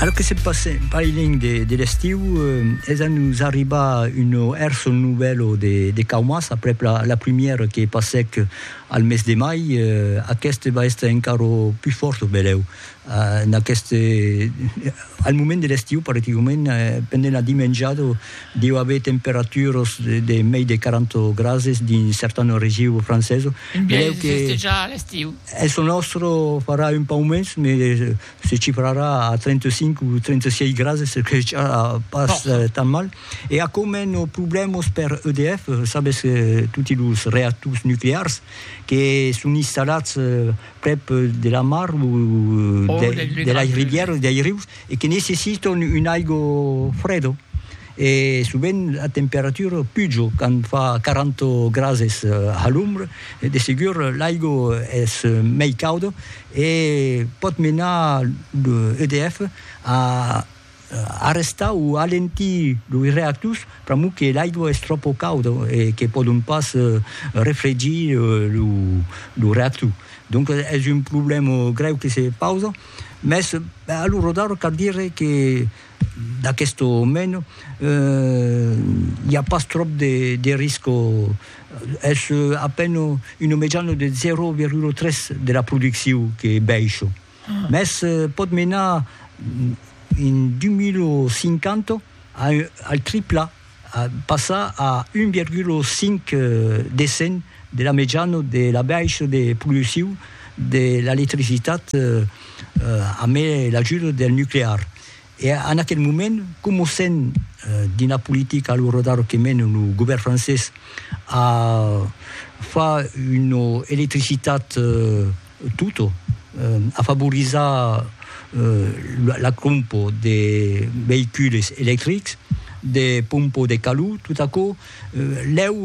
Alò que se passe pailin de, de l'estiu, eh, es a nous arribar uno èrso novèlo de, de caumas, aprèp la, la prumièra que passèc al mes de mai, eh, aqueste va èster encara pus fòrt, velèu, eh, en aqueste, al moment de l'estiu, practicament, eh, pendent la dimenjada, deu aver temperaturas de, de mei de 40 grases dins certana regiu francesa, velèu que. Eth sòn òstre farà un pauc mens, mès se chifrarà a 35 o 36 grades, se que ja pas tan mal. E aquò mèn o problèmas per EDF, sabes que toti los reactors nuclears que son installats prèp de la mar o de las rivièras, dei rius, e que necessitan una aiga freda. E sovent la temperatura puja quand fa 40 grases a l'ombra, de segur l'aiga es mei cauda e pòt menar lo EDF a arrestar o alentir los reactors pr'amor que l'aiga es tròpa cauda e que pòdon pas refregir lo reactor. Donc es un problèma grèu que se pausa, mès a l'ora d'ara cal dire que D'aquesto mena, i a pas tròp de risco. Es a peine una mejana de 0,3 de la produccion que baisha, mès pòt menar en 2050 al tripla. passar a 1,5 de cent de la mejana de la baisha de produccion de l'electricitat amé l'ajuda del nuclear. E en aquel moment, coma sent dins la politica lo rodado que mena lo govèrn francés a far una electricitat Tutto, afavorizar la crompo de veicules electrics, de pompo de calor, tot aquò, lèu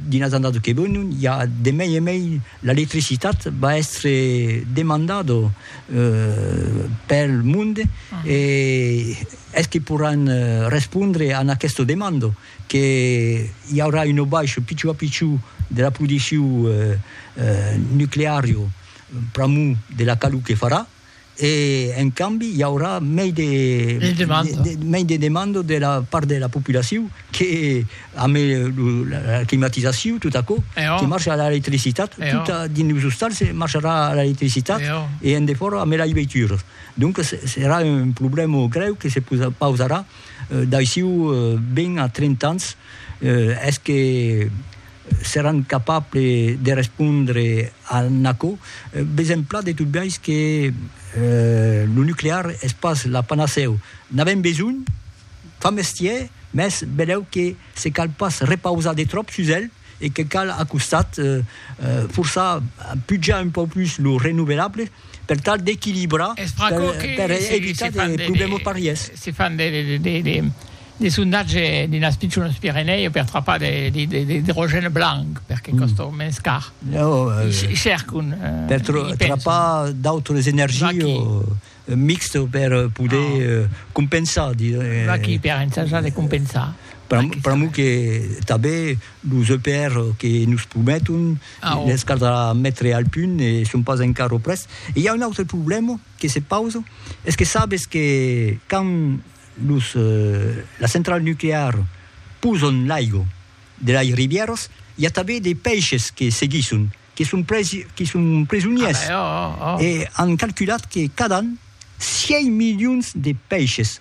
dins las annadas que venon i a de mei e mei l'electricitat va èstre demandada pel monde e es que poràn respondre a aquesta demanda? que i aurà un aubaish pichó a pichó de la produccion nucleario pr'amó de la calor que farà e en cambi i aurà mei de mei de demanda de la part de la populacion que amé la climatizacion tot aquò que marcha a l'electricitat tot dins los ostals marcharà a l'electricitat e en defòra amé lei veituras donc serà un problèma grèu que se pausarà D'aiçiu 20 a 30 ans, es que seràn capable de respondre a n'aquò? Vesèm plan de tot biais que lo nuclear es pas la panacèu. N'avèm besonh? Fa mestièr, mès belèu que se cal pas repausar de tròp sus el. e que cal a costat forçar pujar un pauc pus lo renovelable per tal d'equilibrar per evitar de problèmas parièrs. Se fan de sondatge dins las pichonas Pirenèu per trapar de l'idrogène blanc perque còsta mens car. Chercon per trapar d'autres energies. Mixt per poder ah. compensar. Là qui per ensajar de compensar. Pramo que tabé los EPR que nos prometon, ah, oh. les caldrà metre al punt e son pas encara au pres. E hi a un autre problème que se pausa, es que sabes que quand los, euh, la centrale nucléaire poson l'aigo de las rivièras, hi a tabé de peixes que seguisson. que son presi, que son presoniers, ah, oh, oh, oh. e an calculat que cada an 6 milions de peixes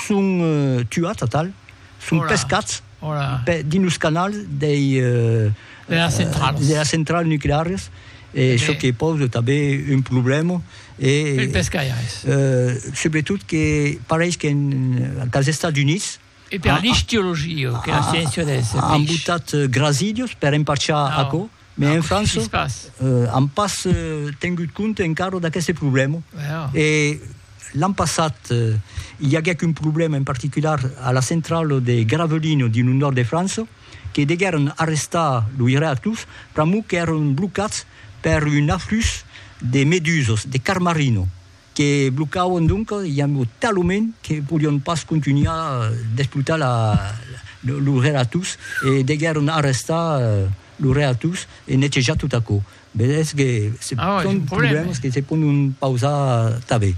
son uh, tuats a tal, son Hola. pescats Hola. Pe, dins los canals dei, uh, de la central, uh, de la central nucleares, e okay. que pose també un problème e el pescaires eh, eh, sobretot que pareix que en, als Estats Units E per l'istiologia, que la sciéncia des peish. An botat grasidios per emparchar aquò, me en França an pas tengut compte encara d'aqueste problema. E l'an passat i aguèc un problema en particular a la centrala de Gravelines dins lo nòrd de França que deguèron arrestar loi reactors pr'amor qu'èron blocats per un aflux de medusas, de carmarino. que blocàvon donc ja lo talament que podion pas contunhar d'explotar la lo reratús e deguèron arrestar lo reratús e netejar tot aquò. Vedètz que se pònt problèmas que se pòdon pausar tanben.